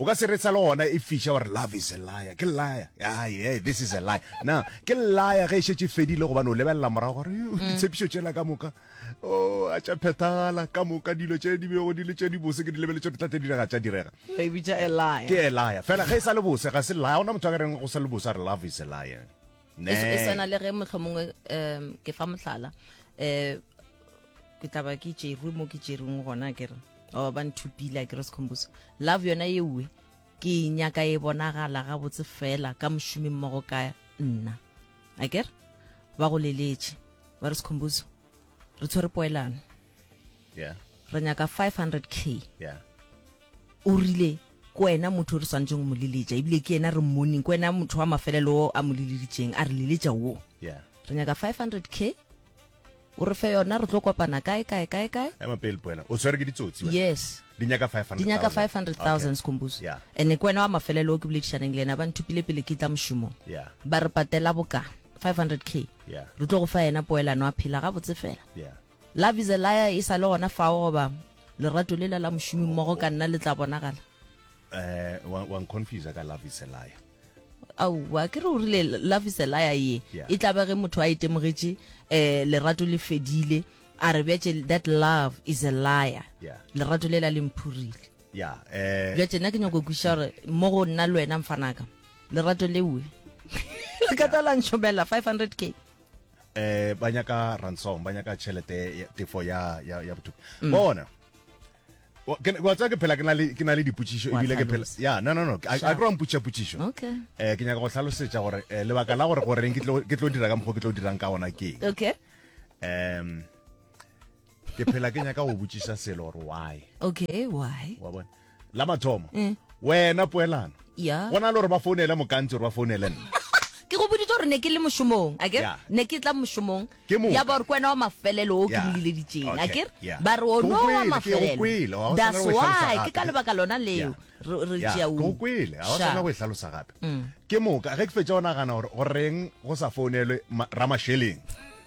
O ka se retsa le gona e fiša wa re love is a liar, ke liar, ah yeah this is a liar. Na ke liar ge e šetše e fedile gobane o lebelela morago gore yo mm. ditshepišo tšela ka moka oh, a tša phethagala ka moka dilo tše di bego di le tše di bose ke di lebeletše di tlate direga tša direga. E bitša a liar. Ke a liar. Fela ge e sa le bose ga se liar, ona motho a ka reng go sa le bose a re love is a liar. e s- e Nee. swana le ge motlho mongwe um ke fa motlhala um ke tlaba ke tšerwe mo ke tšerweng gona kere oba ba nthupile kere sekhombuso love yona ewe ke e nyaka e bonagala gabotse fela ka mošomi mmogo ka nna a kere ba go leletše ba re sekhombuso re tshwere poelano yeah. re nyaka 500 k yeah. o rile ko wena motho o re swanetseng mo leletša ebile ke ena re mmoneng ko wena motho wa mafelelo o a mo leleditseng a re leletša wo yeah. re nyaka 500 k o re fe yona re tlo kopana kae kae kae kae ema pele poena o tshwere ke ditsotsi yes di nyaka 500 di nyaka 500000 skombuso yeah. ene ko wena wa mafelelo o ke boledišaneng le ena ba nthupile pele ke tla mošomo yeah. ba re patela boka 500 k yeah. re tlo go fa yena poelano a phela gabotse fela yeah. Love is a liar e sa le gona fao goba lerato lela la mošomi mmogo ka nna le tla bonagala eh wa wa nconfuse ka love is a liar aowa ke re o rile love is a liar ye Yeah. e tlabe ge motho a e temogetše um lerato le fedile a re bjatše that love is a liar Yeah. lerato le la le mphurile ya eh bjatše nna ke nyako go kweša gore mo go nna le wena mfanaka lerato leoe le ka tla la ntšhomela 500 k eh ba nyaka ransom ba nyaka tšhelete tefo ya ya ya botuku mm. bona wa tsaya ke phela ke na le dipotšišo ebile ke phela ya no no no a tlo mpotšiša potšišo um ke nyaka go tlhalosetša gore eh, lebaka la gore goreng ke tlo dira ka mokgwa ke tlo dirang ka ona ke um ke phela ke nyaka go botšiša selo gore why okay why wa bona la mathomo mm. wena poelano yeah. go na le gore ba founele mokantsi gore ba founele nna ke go boditse gore ne ke le mošomong a kere ne ke tla mošomong ya ba gore kwena wa mafelelo o ke moleleditseng a kere ba re ono wa mafelelo that's why ke ka lebaka lona leo re tšeaokwele ga o tshwana go e tlhalosa gape mm. ke moka ge ke fetsa o nagana gore goreng go sa founelwe ramašeleng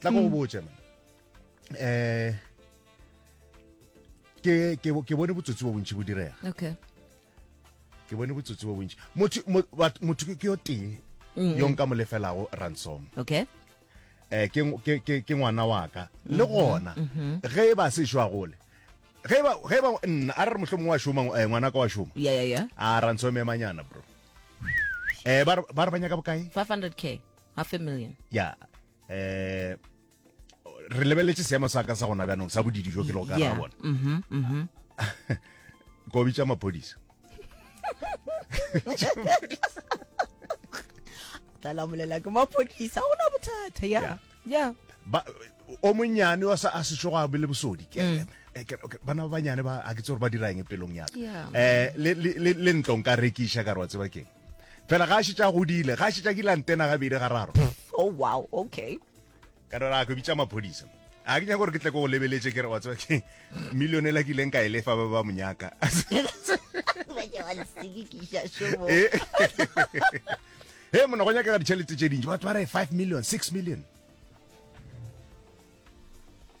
tla go go mm. botse eh ke ke ke bone botsotsi bo bontsi bo direga okay ke bone botsotsi bo bontsi motho motho ke yo tee mm. yo nka mo lefelago ransom okay eh ke ke ke ngwana wa ka mm-hmm. le gona mm-hmm. ge e ba se shwa gole ge e ba ge e ba nna a re mohlomong wa shoma eh, ngwana ka wa shoma ya ya ya a ransom e manyana bro eh ba ba re banya ka bokae 500k half a million ya eh re lebeletse seemo sa ka sa gona bjanong sa bodidi jo ke le go ka ra bona mm-hmm, mm-hmm. ko bitsa maphodisa talamolela ke maphodisa go na bothata ya ya o monnyane wa sa a sešo go a bele bosodi mm. eh, bana ba banyane ba a ke tse gore ba dirang e pelong yaka um eh, le ntlong ka rekiša ka re wa tseba keng fela ga a šetša godile ga a šetša kile antena gabedi ga raro oh wow okay ka dora go bitsa maphodisa a ke nyaka gore ke tle ko go lebeletse ke re wa tswa ke million e la ke ileng ka e lefa ba ba monyaka he mona go nyaka ka ditšhelete tše dintši batho ba re five million six million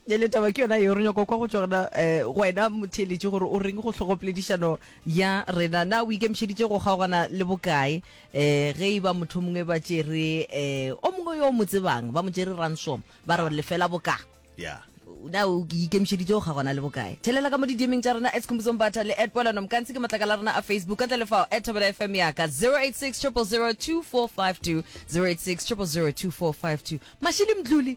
le taba ke yona yeo re nyako kwa go tswa gona um go wena motheeletše gore o reng go hlogopoledišano ya rena na o ikemišeditše go kgaogana le bokae um ge e ba motho mongwe ba tšere um o mongwe yo o mo tsebang ba mo tšere ransom ba re lefela boka ya na o ikemišeditše go kgaogana le bokae thelela ka mo didiemeng tša rena at khumbuzong batha le at polano mokantsi ke matlaka la rena a facebook ka tle le fao at thobela fm yaka 086 0002452 086 0002452 mashili mdluli